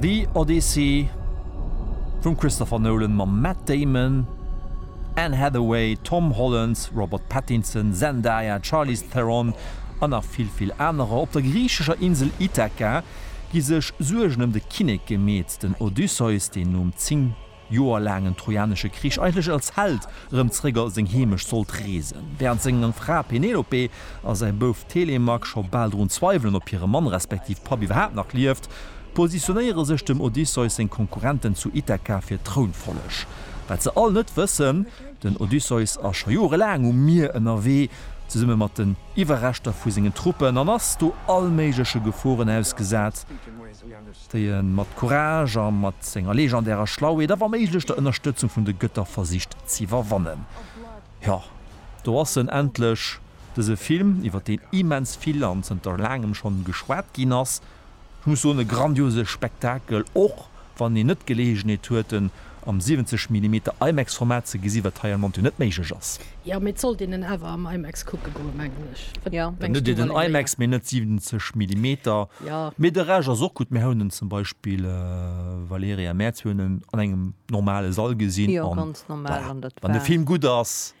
The Odyssey vum Christopher Nolan mam Matt Damon, Anne Hathaway, Tom Holland, Robert Pattinson, Zendaya, Charlize Theron an nach vill vill anerer. Op der griichescher Insel Ithaka gi sech Suergen ëm de Kinnek gemeet. Den Odysseus, deen nom 10 Joer laangen Trojanesche Krich eigentlech als Held erëm zeréck a seng Heemecht sollt reesen, wärend seng Fra Penelope a säi Bouf Telemak scho bal drun zweiwelen, ob hire Mann, respektiv Papp, iwwerhaapt nach lieft, positionéiere sech dem Odysseus seng Konkurrenten zu Ithaka fir d'Trounfolleg. Wat se all net wëssen, Den Odysseus ass scho jorelaang um Mier ënnerwee, zesumme mat den Iwwerreschter vu sengen Truppen, an ass do allméigleche Geforen ausgesat. déi e mat Courage a mat senger legendärer Schlauheet a wa méiglech der Ënnerstëtzung vun de Gëtter versicht z'iwwerwannen. Jo, do ass en endlech, dëse Film, iwwer deen immens vill an zënter laangem schonn geschwat ginn ass. Ech muss soen, e grandiose Spektakel, och wann een net d'Geleegenheet huet en Am 70 Millimeter IMAX Format ze gesi wat hei an Montu net méiglech ass. Jo mee et sollt een en awer am IMAX kucke goen mengen ech. Wat mengs du Valérie? Dann hutt dir den IMAX mee net 70 Millimeter. Jo. Mee de Rescht ass och gutt. Mir hauen en zum Beispill Valérie a Mäerz, mir hunn en an engem normale Sall gesinn. Jo ganz normal an dat war. Wann de Film gutt ass.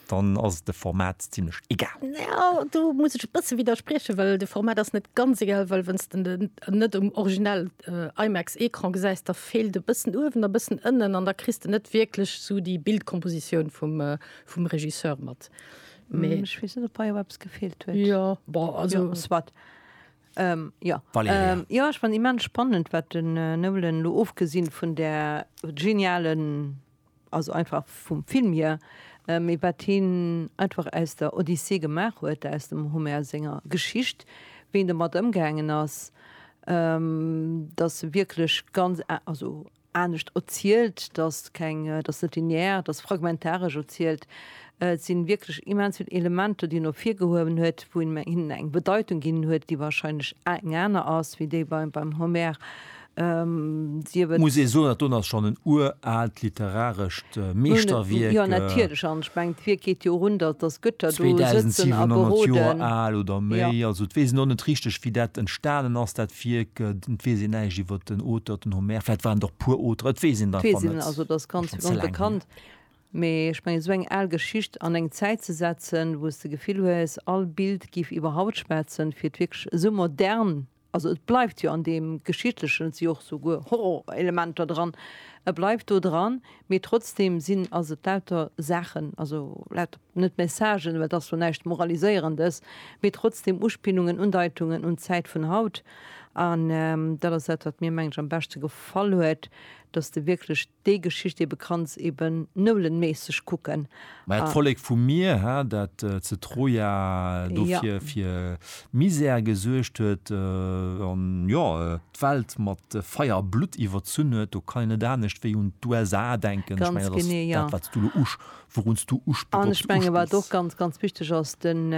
dann ass et de Format zimlech egal. Ja, do muss ech e bësse widerspriechen, well de Format ass net ganz egal, well wann s de den net um original äh, IMAX-Ecran gesäis, da feelt e bëssen uewen a bëssen ënnen an da kriss de net wierklech esou déi Bildkompositioun vum, äh, vum Regisseur mat. Mee, Ech weess net, ob hei awer eppes gefeelt huet. ja, bon, Jo, also, soit. Ähm, jo. Valerija. Ähm, jo, ech fand immens spannend, wat den äh, Nolan lo, ofgesinn vun där genialen also einfach vum Film hier, mee wat hien einfach aus der Odyssee gemaach huet, aus dem Homer senger Geschicht, wéi en domat ëmgaangen ass, dass se wierklech ganz, also anescht erzielt, dass keng, dass net linear, dass fragmentaresch erzielt. Et si wierklech immens vill Elementer, déi en ervirgehuewen huet, wou en hinnen eng Bedeitung ginn huet, déi wahrscheinlech eng aner ass wéi déi beim Homer. Muss ee soen, dat do ass schonn en uraalt literarescht Meeschterwierk. Jo, natierlech. An ech mengen, d'Wierk geet jo erun, datt Gëtter do sëtzen a beroden. 2.700 Joer al oder méi. Also, et weess een och net richteg, wéi dat entstanen ass, dat Wierk. Et weess een näischt iwwer den Auteur, den Homer. Vläicht waren et och puer Auteren, et weess een et einfach net. Et weess een net. Also, et ass ganz onbekannt. Mee ech mengen, esou eng al Geschicht an eng Zäit ze setzen, wou s de d'Gefill hues, all Bild géif iwwer Haut schwätzen, fir et wierklech esou modern Also et bleift jo an deem Geschichtlechen, et si jo och souguer Horrorelementer dran, e bleift do dran, mee trotzdeem sinn, ass et lauter Saachen, also lauter, net Messagen, well et ass jo näischt Moraliséierendes, mee trotzdeem Uspillungen, Undeitungen un d'Zäit vun haut. An dat ass dat, wat mir, mengen ech, am beschte gefall huet, datt s de wierklech Déi Geschicht eben kanns eben noulenméisseg kucken. Mä et Vollek vum Mier, hä, dat ze Troja do fir, fir Misär gesuergt huet, an, jo, d'Welt mat Feier a Blutt iwwerzunn huet, do kann een net anescht wéi un d'USA denken. Ech mengen, dat ass dat, wat s du elo usch, wourun s du usch, An ech mengen, wat och ganz, ganz wichteg ass, den,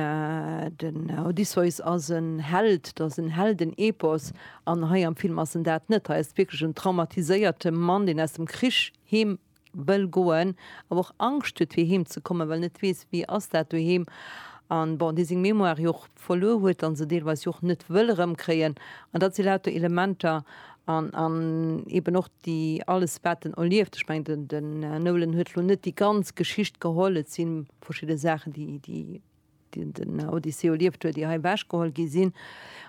den Odysseus ass en Held, dat ass en Heldenepos. An hei am Film ass en dat net. Hei ass et wierklech en traumatiséierte Mann, deen aus dem Krich heem wëll goen, awer och Angscht huet, fir heem ze kommen, well en net weess, wéi ass dat doheem. An bon, dee seng Mémoire jo och verluer huet an se deelweis jo och net wëll erëmkréien. An dat si lauter Elementer an, an eben och déi, alles wat en erlieft. Ech mengen, den Nolan huet elo net déi ganz Geschicht geholl. Et si verschidde Saachen, déi, déi. déi den Odysseus erlieft huet, ier hei ewechgeholl gi sinn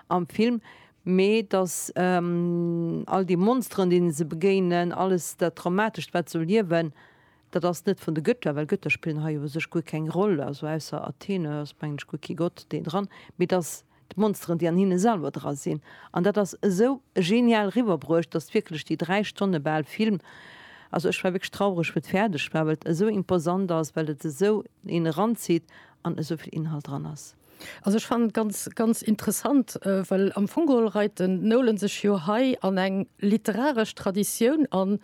am Film, mee datt all déi Monsteren, deene se begéinen, alles dat Traumatescht, wat se erliewen, dat ass net vun de Götter, well Götter spillen hei u sech guer keng Roll, also ausser Athene ass, mengen ech, guer kee Gott deen dran, mee datt d'Monsteren déi an hinne selwer dra sinn an dat ass esou genial riwwerbruecht, datt wierklech déi 3 Stonne bal Film, also ech war wierklech traureg wou et fäerdeg war, well et esou imposant ass, well et esou een eranzitt an esou vill Inhalt dran ass. Also ech fannen et ganz, ganz interessant, well am Fong geholl reit den Nolan sech jo hei an eng literaresch Traditioun an,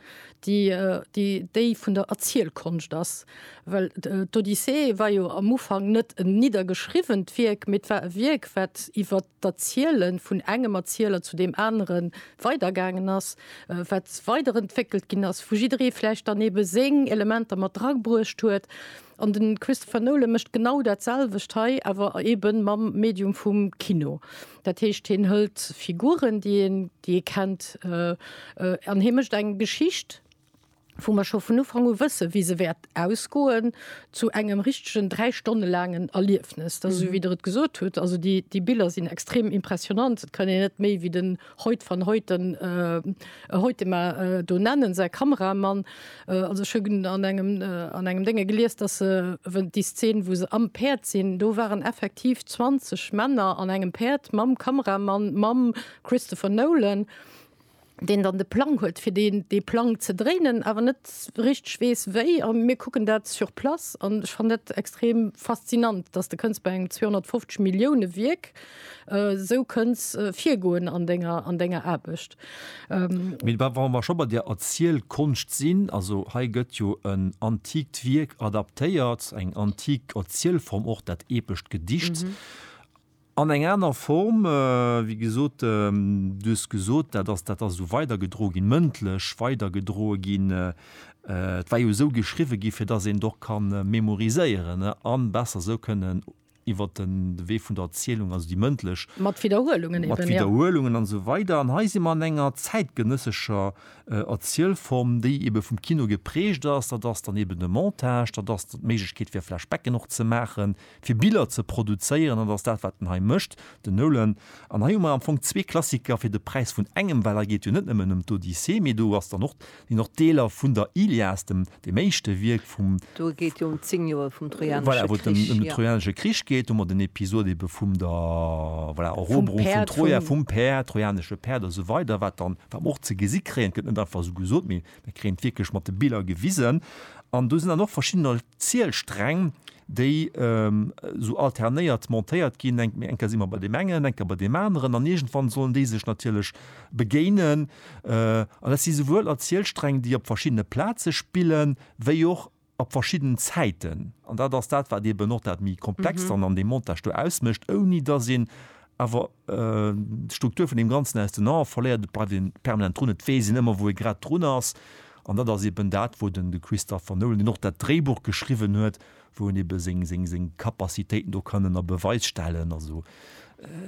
déi déi vun der Erzielkonscht ass. Well d'Odyssee war jo am Ufank net en niddergeschriwwent Wierk, mee et war e Wierk, wat iwwer d'Erziele vun engem Erzieler zu deem anere weidergaangen ass, wat weiderentwéckelt ginn ass, wou jidderee vläicht dann eebe seng Elementer mat drabruecht huet. An de Christopher Nolan mécht genau dat selwecht hei, awer eebe mam Medium vum Kino. Dat heescht, hien hëlt Figuren, déi ee kennt, an hie mécht eng Geschicht, wou mer scho vun Ufank u wëssen, wéi se wäert ausgoen, zu engem richtegen dräi Stonne laangen Erliefnes. Dat ass esou, wéi Der et gesot hutt. Also déi, déi Biller sinn extrem impressionnant. Et kann een net méi wéi den Hoyt van Hoyten, äh, Hoytema, äh, do nennen, säi Kameramann. Äh, also ech hunn an engem, äh, an engem Dénge gelies, dass se, wou déi Szene, wou se am Päerd sinn, do waren effektiv 20 Männer an engem Päerd mam Kameramann, mam Christopher Nolan. deen dann de Plang huet fir deen dee Plang ze dréinen, awer net richteg weess wéi. A mir kucken dat sur place an ech fannen dat extrem faszinant, datt de kënns bei engem 250 Millioune Wierk esou kënns virgoen an denger an denger Aarbecht. Mee wa wa mer scho bei der Erzielkonscht sinn, also hei gëtt jo en antikt Wierk adaptéiert, eng antik Erzielform och, dat epescht Gedicht. An eng aner Form, wéi gesot, du hues gesot, dat ass, dat ass esou weidergedroe ginn, mëndlech weidergedroe ginn. Et war jo esou geschriwwe gi fir datt een et och ka memoriséieren a besser esou kënnen iwwer de Wee vun der Erzielung, also déi mëndlech. Mat Widderhuelungen eben, ja. Mat Widderhuelungen an esou weider. An hei si mer an enger zäitgenëssescher Erzielform, déi ebe vum Kino geprägt ass. Dat ass dann eben de Montage, dat ass d'Méiglechkeet fir Flashbacken och ze maachen. fir Biller ze produzéieren, an dat ass dat, wat en hei mécht, den Nolan. An hei hu mer am Fong zwee Klassiker fir de Präis vun engem, well hei geet jo net nëmmen ëm d'Odyssee, mee do ass dann och, sinn och Deeler vun der Ilias, dem, deem éischte Wierk vum, Do geet jo ëm zéng Joer vum Trojanesche Krich, voilà, wou et ëm de jo. Trojanesche Krich geet, hu mer den Episod ebe vum der, voilà, Vum Eroberung vun Päerd, Troja, vum, vum Päerd, trojanesche Päerd a sou weider, wat dann, wat mer och ze gesi kréien, et gëtt net einfach esou gesot, mee Mir kréien et wierklech mat de Biller gewisen. An do sinn dann och verschidden Erzielsträng, déi esou alternéiert montéiert ginn, eng eng Kéier si mer bei deem engen, eng Kéier bei deem aneren an iergendwann sollen déi sech natierlech begéinen. An dat si souwuel Erzielsträng, déi op verschiddene Plaze spillen, wéi och op verschidden Zäiten, an dat ass dat, wat eben och dat méi Komplext dann an deem Montage do ausmécht, ouni dass een awer d'Struktur vun deem Ganzen aus den Ae verléiert. Et bleift ee permanent drun, et weess een ëmmer, wou ee grad drun ass. An dat ass eben dat, wou den de Christopher Nolan, deen och dat Dréibuch geschriwwen huet, wou en ebe seng Capacitéiten do kann ënner Beweis stellen. Also.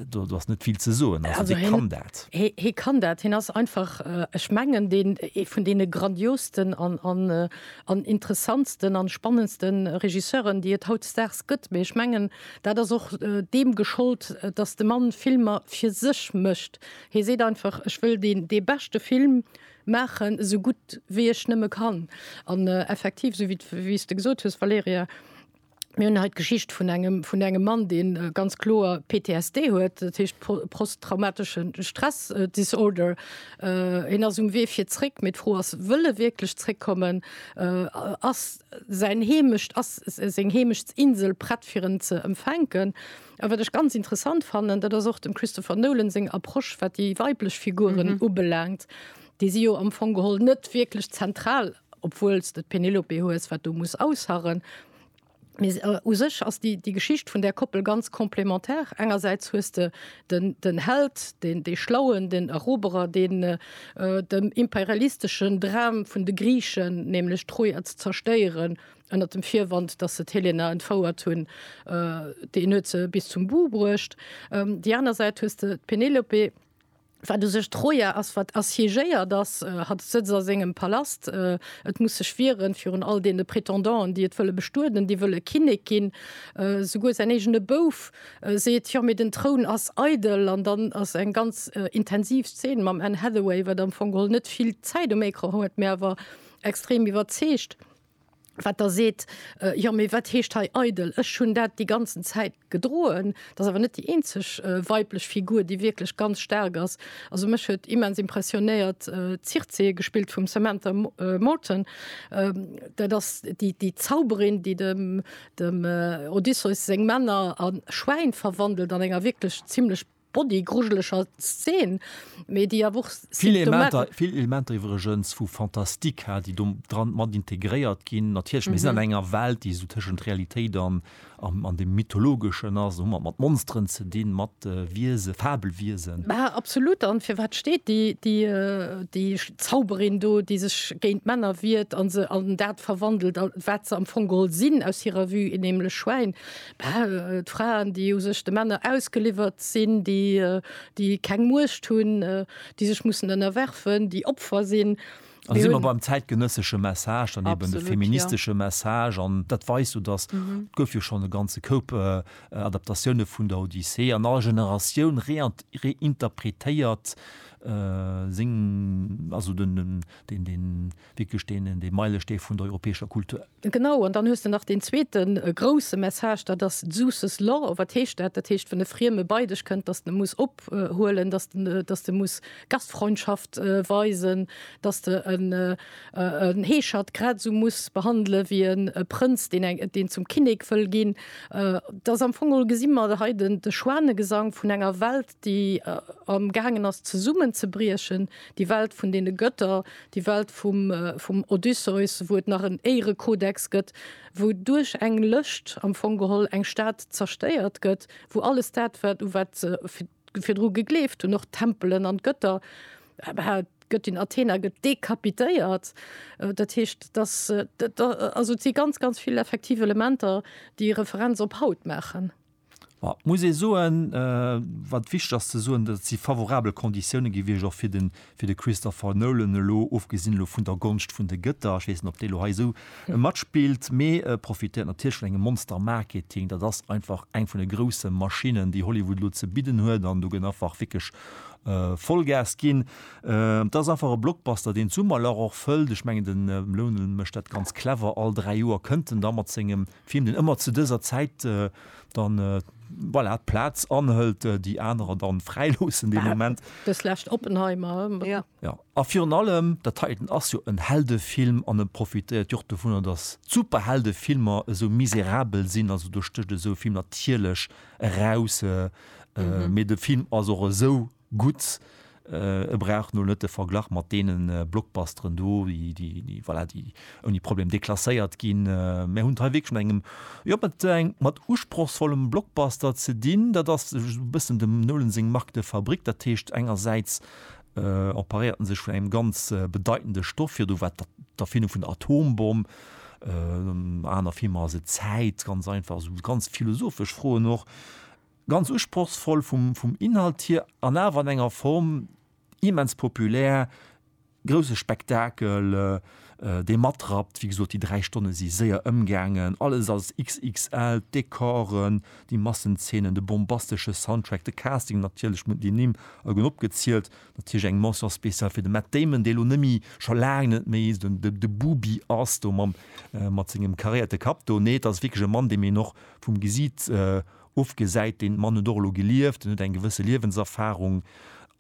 Do ass net vill ze soen. Also hie kann dat. Hie kann dat. Hien ass einfach, ech mengen, ee vun deene grandiosten an interessantsten an spannendste Regisseuren, déi et hautdesdaags gëtt. Mee ech mengen, dat ass och deem geschollt, datt de Mann Filmer fir sech mécht. Hie seet einfach, ech wëll dee beschte Film maachen, esou gutt wéi ech nëmme kann. An effektiv, esou wéi s de gesot hues, Valerija, Mir hunn hei d'Geschicht vun engem, vun engem Mann, dee ganz kloer PTSD huet, dat heescht posttraumateschen Stress äh, Disorder. Äh, hien ass um Wee fir zréck, mee d'Fro ass, wëll e wierklech zréckkommen? Äh, ass säin Heemecht, ass seng Heemeschtsinsel prett fir en ze empfänken? A wat ech ganz interessant fannen, dat ass och dem Christopher Nolan seng Approche, wat déi weiblech Figuren mhm. ubelaangt, déi si jo am Fong geholl net wierklech zentral obwuels de d'Penelope hues, wat do muss ausharren. Mee u sech ass déi, déi Geschicht vun där Koppel ganz complémentaire. Engersäits hues de den, den Held, deen, dee Schlauen, den Eroberer, deen dem imperialisteschen Dram vun de Griichen, nämlech d'Troja ze zerstéieren, ënner dem Virwand, datt se d'Helena entfouert hunn, deen huet se bis zum But bruecht. Déi aner Säit hues de d'Penelope, Wat u sech Troja ass, wat assiégéiert ass, hat e Sëtz a sengem Palast, et muss sech wieren virun all deene Prétendanten, déi et wëlle bestueden, déi wëlle Kinnek ginn. Souguer säin eegene Bouf seet, Jo, mee den Troun ass eidel. An dann ass eng ganz intensiv Zeen mam Anne Hathaway, wat am Fong geholl net vill Zäit um Ecran huet, mee awer extrem iwwerzeegt. wat Der seet, jo mee wat heescht hei eidel? Ech hunn dat déi ganzen Zäit gedroen. Dat ass awer net déi eenzeg weiblech Figur, déi wierklech ganz staark ass. Also mech huet immens impressionéiert d'Circe, gespillt vum Samantha Morton. Dat ass déi Zauberin, déi dem Odysseus seng Männer a Schwäin verwandelt an enger wierklech zimlech Body grujeleger Szen, mee déi awer och symptomatesch. Vill Elementer iwwregens vu Fantastica, déi do dran mat integréiert ginn. Natierlech, mir sinn an enger Welt, déi esou tëschent Realitéit an an dem Mythologeschen ass. Hu mer et mat Monsteren ze dinn, mat Wiesen, Fabelwiesen. Mä absolut. An fir wat steet déi, déi, déi Zauberin do, déi sech géint d'Männer wiert an se an dat verwandelt, wat se am Fong geholl sinn, aus hirer Vue, nämlech Schwäin? D'Fraen, déi u sech de Männer ausgeliwwert sinn, déi keng Muecht hunn, déi sech mussen ënnerwerfen, déi Opfer sinn. An do si mer beim zäitgenëssesche Message, dann eben de feministesche Message. An dat weist jo, datt, et gouf jo schonn e ganze Koup Adaptatioune vun der Odyssee an all Generatioun réinterpretéiert seng, also den. Wierklech deen, dee Meilestee vun der europäescher Kultur. Genau, an dann hues de nach deen zweete grousse Message, dat ass d'Seuss's Law. Wat heescht dat? Dat heescht, wann e Frieme bei dech kënnt, dass de muss ophuelen, dass de, dass de muss Gastfreundschaft weisen, dass de en, en Heeschert grad esou muss behandele wéi e Prënz, deen eng, deen zum Kinnek wëll ginn. Dat ass am Fong geholl, gesi mer hei den, de Schwanegesang vun enger Welt, déi am gaangen ass zesummenzebriechen, déi Welt vun deene Götter, déi Welt vum Odysseus, wou et nach en Éierekodex gëtt, wou duerch eng Lëscht am Fong geholl eng Stad zerstéiert gëtt, wou alles dat wat u wat se virdru gegleeft hunn, och d'Tempelen an d'Götter, d'Göttin Athena gëtt dekapitéiert. Dat heescht, dass et si ganz, ganz vill effektiv Elementer, déi Referenz op haut maachen. Ma et muss ee soen, wat wichteg ass ze soen, et si favorabel Konditioune gewiescht och fir de fir de Christopher Nolan elo, ofgesinn elo vun der Gonscht vun de Gëtter, ech weess net, ob déi elo hei esou matspillt, mee e profitéiert natierlech vun engem Monster-Marketing. Dat ass einfach eng vun de grousse Maschinnen, déi Hollywood elo ze bidden huet an do gëtt einfach wierklech Vollgas ginn. Et ass einfach e Blockbuster, deen d'Summerlach och fëllt. Ech mengen, de Nolan mécht dat ganz clever, all dräi Joer kënnt en da mat sengem Film, deen ëmmer zu dëser Zäit dann, voilà, d'Plaz anhëlt, déi anerer dann fräiloossen dee Moment. Dës lescht Oppenheimer. Jo. Jo. A virun allem, dat heiten ass jo en Heldefilm an e profitéiert jo och dovunner, datt d'Superheldefilmer esou miserabel sinn, also do stécht esou e Film natierlech eraus, mee de Film ass och esou gutt. E brauch nol net de Verglach mat deene Blockbusteren do, déi, voilà, déi ouni Problem deklasséiert ginn. Mir hunn et hei wierklech mat engem, jo, mat engem, mat usprochsvollem Blockbuster ze dinn. Dat ass esou e bëssen dem Nolan seng Marque de fabrique. Dat heescht, engersäits emparéiert en sech vun engem ganz bedeitende Stoff, virdu war et d'Erfindung vun der Atombomm, aner Filmer ass et d'Zäit, ganz einfach, esou ganz philosophesch Froen och. Ganz usprochsvoll vum Inhalt hier an awer an enger Form immens populär, grousse Spektakel, dee matrappt. Wéi gesot, déi dräi Stonne si séier ëmgaangen. Alles ass XXL, d'Decoren, déi Massenzeenen, de bombastesche Soundtrack, de Casting natierlech, déi Nimm a ginn opgezielt. Natierlech eng Mention spéciale fir de Matt Damon, dee elo nëmme, scho laang net méi, esou de Bubi ass do mat sengem karéierte Kapp do. Nee, et ass wierklech e Mann, deem een och vum Gesiit Ofgesäit, deen Mann huet och elo gelieft, en huet eng gewësse Liewenserfahrung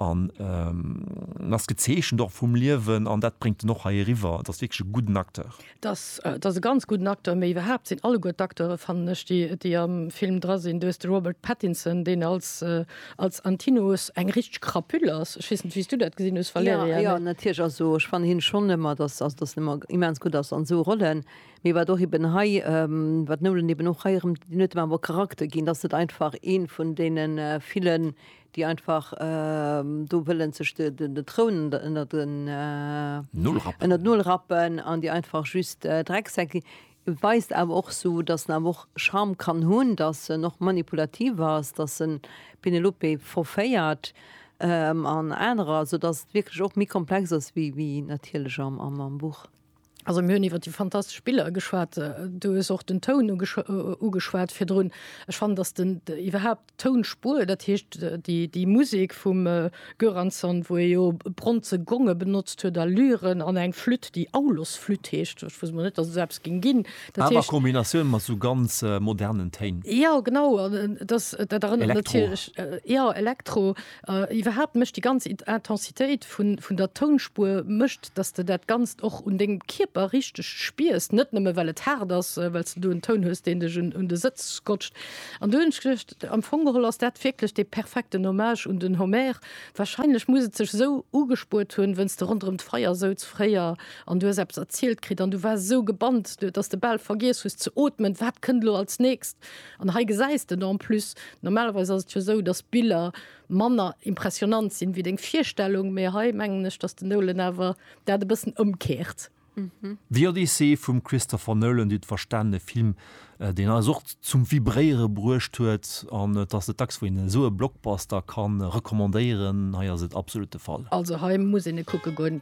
an en ass gezeechent och vum Liewen an dat bréngt en och hei eriwwer. Et ass wierklech e gudden Acteur. Et ass e ganz gudden Acteur, mee iwwerhaapt sinn alleguer d'Acteure, fannen ech, déi am Film dra sinn, du hues de Robert Pattinson, deen als Antinous eng richteg Krapüll ass, ech weess net, wéi s du dat gesinn hues, Valerija. Jo, natierlech, also ech fannen hien schonn ëmmer, dass en ëmmer immens gutt ass an esou Rollen. Mee wat och eben hei, wat Nolan eben och hei erëm net ëmmer wëll Charakter ginn, dass et einfach ee vun deene villen, déi einfach do wëllen sech de Troun ënnert d'Nol rappen an déi einfach just Drecksäck sinn, weist awer och esou, dass en awer och Charme kann hunn, dass en och manipulativ ass, dass en d'Penelope verféiert an anerer, soudass et wierklech och méi komplex ass wéi natierlech am Buch. Also mir hunn iwwer déi fantastesch Biller geschwat. Du hues och den Toun ugeschwat virdrun. Ech fannen, datt den iwwerhaapt d'Tounspur, dat heescht déi Musek vum Göransson, wou e jo bronze Gonge benotzt huet a Lyren an eng Flütt, déi Aulos-Flütt heescht, ech wosst emol net, datt et esou eppes géing ginn. Awer a Kombinatioun mat esou ganz modernen Téin. Jo, genau. Elektro. Jo, Elektro. Iwwerhaapt mécht déi ganz Intensitéit vun der Tounspuer mécht, datt s de dat Ganzt och un dengem Kierper richteg spiers, net nëmme well et haart ass, well s de do en Toun hues, deen dech un de Sëtz scotcht. An du hunn ech geduecht, am Fong geholl ass dat wierklech dee perfekten Hommage un den Homer. Warscheinlech muss et sech esou ugespuert hunn, wéinst s de ronderëm d'Feier souz fréier an du hues eppes erzielt kritt an du waars esou gebannt, datt s de bal vergiess hues ze ootmen, wat kënnt elo als nächst. An hei gesäis de en plus, normalerweis ass et jo esou, datt d'Biller manner impressionant sinn wéi deng Virstellung, mee hei mengen ech, datt den Nolan awer dat e bëssen ëmkeert. The Odyssey vum Christopher Nolan, dut verstaanene Film, deen eis och zum Vibréiere bruecht huet. An et ass net dacks, wou een esou e Blockbuster ka recommandéieren, hei ass et absolut de Fall. Also hei muss een e kucke goen.